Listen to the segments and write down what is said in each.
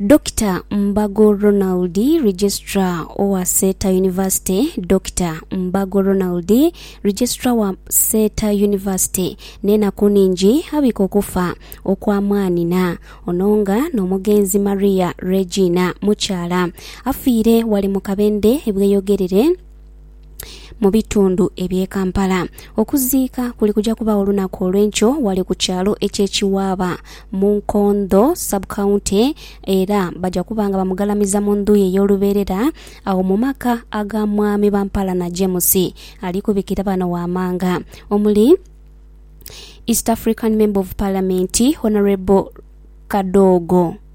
Dokita Mbago Ronald, Registrar owa Seeta University, Dokita Mbago Ronald, Registrar wa Seeta University, n'enaku ningi abika okufa okwa mwanhina ono nga n'omugenzi Maria Regina Mukyala afiire ghale mu Kabende e Bweyogerere. mu bitundu eby'e Kampala. Okuziika kuli kuja kubaawo olunaku olw'enkyo ghale ku kyalo eky'e Kiwaaba mu Nkondho Sub County era baja kuba nga bamugalamiza mu ndhu ye ey'olubeerera agho mu maka aga Mwami Bampalana James ali kubikira bano ghamanga omuli East African Member of Parliament Honourable Kadogo.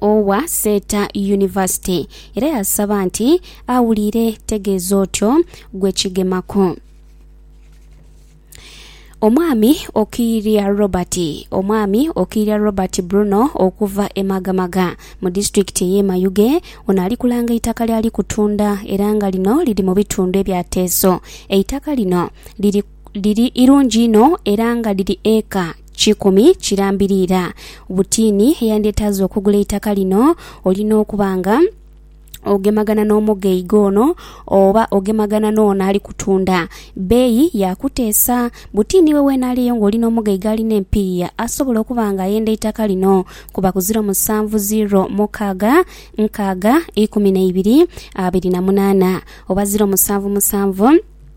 owa Seeta Yunivasite era yasaba nti awulire tegeeza otyo gwe kigemaku. Omwami Okiirya Robert Omwami Okiirya Robert Bruno okuva e Magamaga mu disitulikiti ey'e Mayuge ono ali kulanga eitaka ly'ali kutunda era nga lino liri mu bitundu ebya Teeso. Eitaka lino liri liri irungi inho era nga liri eeka Kikumi kirambiriira butiini eyandyetaaza okugula eitaka lino, olina okuba nga ogemagana n'omugeiga ono oba ogemagana n'ono ali kutunda. Bbeeyi ya kuteesa. Butiini we weena ali eyo ng'olina omugeiga alina empiiya asobola okuba nga ayenda eitaka lino kuba ku ziro musanvu ziro mukaaga nkaaga ikumi na ibiri abiri na munaana oba ziro musanvu musanvu,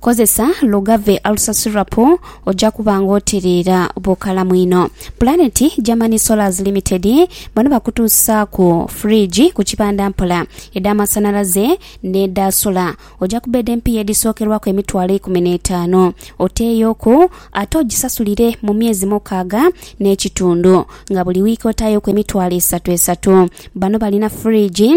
Kozesa Lugave Alusasulirapo oja kuba nga otiriira bukalamu inho. Planet Germany Solars Limited bano bakutuusaaku fridge ku kibanda mpola, edh'amasanhalaze n'edha sola. Oja kubbeeda empiiya edhisookerwaku emitwalo eikumi n'etaanu oteeyoku ate ogisasulire mu myezi mukaaga n'ekitundu nga buli wiiki otaayoku emitwalo esatu esatu. Bano balina fridge.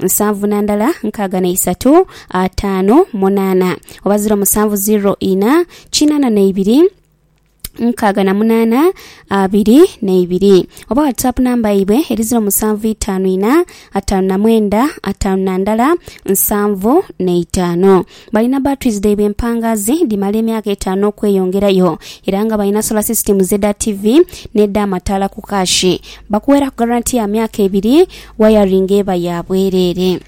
nsanvu na ndala nkaaga na isatu ataanu munaana oba ziro musanvu ziro ina kinaana na ibiri nkaaga na munaana abiri na ibiri oba whatsapp namba yaibwe eri ziro musanvu itaanu ina ataanu na mwenda ataanu na ndala nsanvu na itaanu Balina batteries dhaibwe empangaazi dhimala emyaka etaanu okweyongerayo era nga balina solar systems edha ttivi n'edh'amataala ku kaashi. Bakuweeraku garanti ya myaka ebiri, wayaringi eba ya bwereere.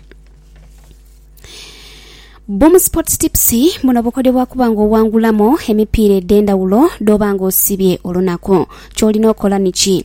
Boom Sports Tips, Buno bukodyo bwa kuba nga owangulamu emipiira edh'endhawulo dh'oba nga osibye olunaku. Ky'olina okola niki?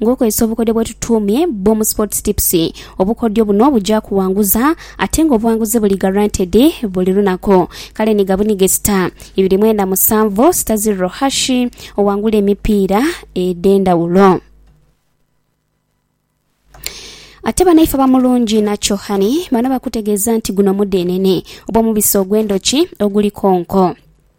Ng'okozesa obukodyo bwetutuumye Boom Sports Tips, obukodyo buno buja kuwanguza ate nga obuwanguzi buli guaranteed buli lunaku. Kale ni gabunige sita ibiri mwenda musanvu sita zirro hash owangule emipiira edhendhawulo. Ate banaife aba Mulungi Natural Honey bano bakutegeeza nti guno mudhenene oba omubisi ogw'endhoki oguliko nko.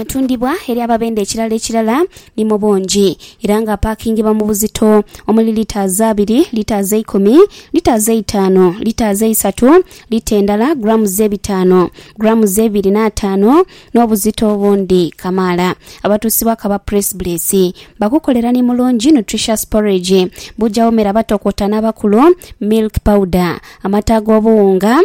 Atundibwa eri ababenda ekirala ekirala ni mu bungi era nga apaakingibwa mu buzito omuli litaazi abiri, litaazi eikumi, litaazi eitaanu, litaazi eisatu, lita endala, grammes ebitaanu, grammes eibiri n'ataanu n'obuzito obundi kamaala. Abatuusibwa kaba press bless bakukolera ni mulungi nutritious porridge, buja womera batokota n'abakulu, milk powder, amata ag'obuwunga,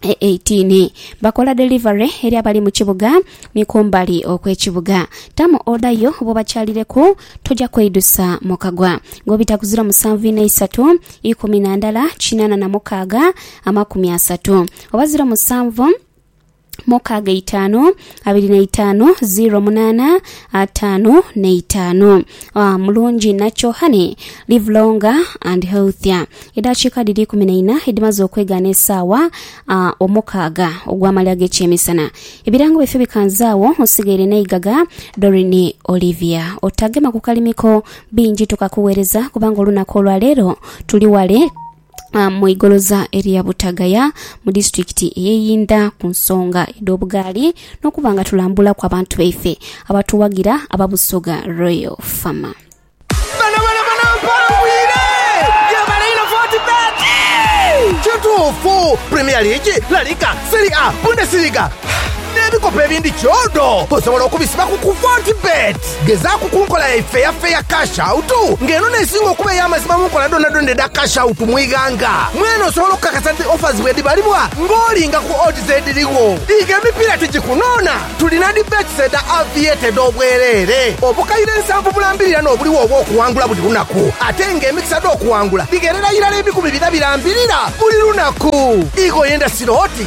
18 bakola delivery eri abali mu kibuga ni kumbali okw'ekibuga. Tamu oda yo bw'obakyalireku, toja kweidusa mu kagwa. Ng'obita ku ziro musanvu inha isatu, ikumi na ndala, kinaana na mukaaga, amakumi asatu, oba ziro musanvu, mukaaga eitaanu, abiri na itaanu ziro munaana ataanu na itaanu. Ah, mulungi nakyo honey live longer and healthier. Edaakiika dhiri ikumi na ina edhimaze okwegaana esaawa ah, omukaaga ogw'amalya g'ekyemisana. Ebirango byaifee bikanze agho nsigaire n'eigaga Doreen Olivia. Otagema ku kalimiko bingi tukakugheereza kubanga olunaku olwa leero tuli ghale. mu igoloza erya Butagaya mu disitulikiti eye Yinda ku nsonga edho bugaali nokuba nga tulambulaku abantu baife abatuwagira aba Busoga Royal Fama. Kituufu, Premier League, La Liga, Serie A, Bundesliga n'ebikopo ebindi kyodo osobola okubisiba ku ku Fortebet. Gezaaku ku nkola ya ifeyafeya, cash out, nga eno n'esinga okuba ey'amazima mu nkola dhoonadhoona edha cash out mu ighanga. Mwene osobola okukakasa nti offers bwedhibalibwa ng'olinga ku odds edhirigho. Dhiika emipiira tigikunoona. Tulina dhi bets edha Aviator edh'obwereere. Obukaire nsanvu bulambirira n'obuligho obw'okuwangula buli lunaku, ate nga emikisa dh'okuwangula dhigherera irala ebikumi bina birambirira buli lunaku. Igh'oyenda siro oti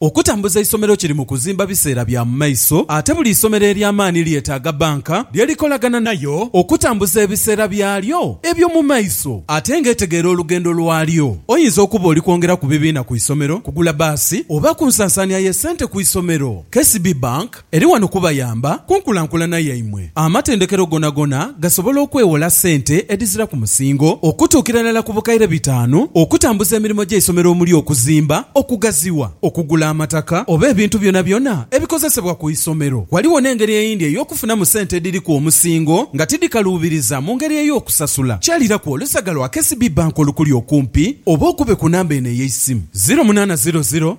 Okutambuza eisomero kiri mu kuzimba biseera bya mu maiso ate buli isomero ery'amaani lyetaaga bbanka lye likolaganha nayo okutambuza ebiseera byalyo ebyo mu maiso ate ng'etegeera olugendo lwalyo. Oyinza okuba oli kwongera ku bibiina ku isomero, kugula baasi oba ku nsansaania y'essente ku isomero. KCB Bank. Eri wano kubayamba ku nkulankulana yaimwe. Amatendekero gonagona gasobola okwewola sente edhizira ku musingo okutuukira irala ku bukaire bitaanu okutambuza emirimo gy'eisomero omuli okuzimba, okugaziwa, okugula amataka oba ebintu byonabyona ebikozesebwa ku isomero. Ghaligho n'engeri eyindi ey'okufunamu sente edhiri ku omusingo nga tidhikaluubiriza mu ngeri ey'okusasula. Kyaliraku olusaga lwa KCB Bank olukuli okumpi oba okube ku namba eno ey'eisimu, ziro munaana ziro ziro,